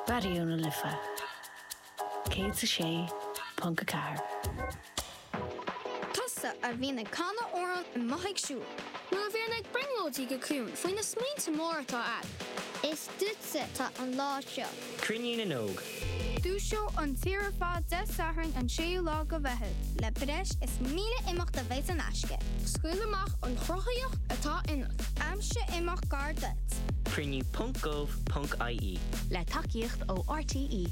Raidió na Life 106.4. Tusa a bhíonn ag canadh amhrán i mboth ar siúl. Nó a bhíonn ag brionglóidí go ciúin faoi na smaointe móra atá agat. Is duitse atá an lá seo. Cruinniú na nÓg. Dúiseoidh an tír ar fad Dé Sathairn an 6ú lá de Mheitheamh. Le breis is 1,000 imeacht a bheidh in aisce. Scaoil amach an chruthaíocht atá ionat. Aimsigh imeacht gar duit. Cruinniú ponc gov ponc ie. Le tacaíocht ó RTÉ.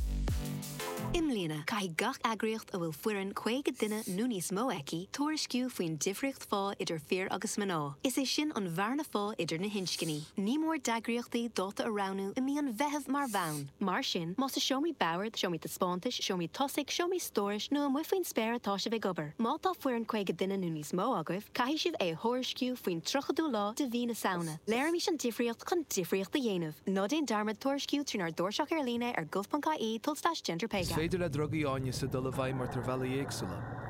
I mbliana, caithfidh gach eagraíocht a bhfuil foireann 50 duine nó níos mó aici tuairisciú faoin difríocht phá idir fir agus mná, is é sin an bhearna phá idir na hinscní. Ní mór d'eagraíochtaí dáta a roghnú i mí an Mheithimh mar bhonn. Mar sin, más i seomraí boird, seomraí taispeántais, seomraí tosaigh, seomraí stórais nó amuigh faoin spéir atá sibh ag obair, má tá foireann 50 duine nó níos mó agaibh, caithfidh sibh é a thuairisciú faoin 30ú lá de mhí na Samhna. Léirímis an difríocht chun difríocht a dhéanamh. Ná déan dearmad tuairisciú trínár dtairseach ar líne ar gov.ie tulslais gender pay gap. Is féidir le drugaí áineasa dul i bhfeidhm ort ar bhealaí éagsúla.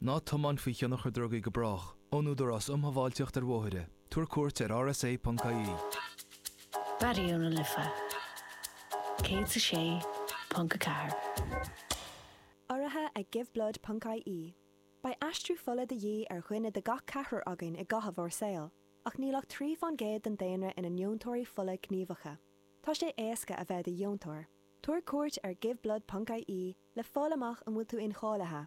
Ná tiomáin faoi thionchar drugaí go brách, ón Údarás um Shábháilteacht ar Bhóithre, tabhair cuairt ar rsa.ie. Raidió na Life 106.4. Urraithe ag Give Blood ponc IE, beidh aistriú fola de dhíth ar dhuine de gach ceathrar againn i gcaitheamh ár saoil, ach níl ach trí faoin gcéad den daonra ina ndeontóirí fola gníomhacha. Tá sé éasca a bheith i do dheontóir. Tabhair cuairt ar give blood ponc IE le fáil amach an bhfuil tú incháilithe.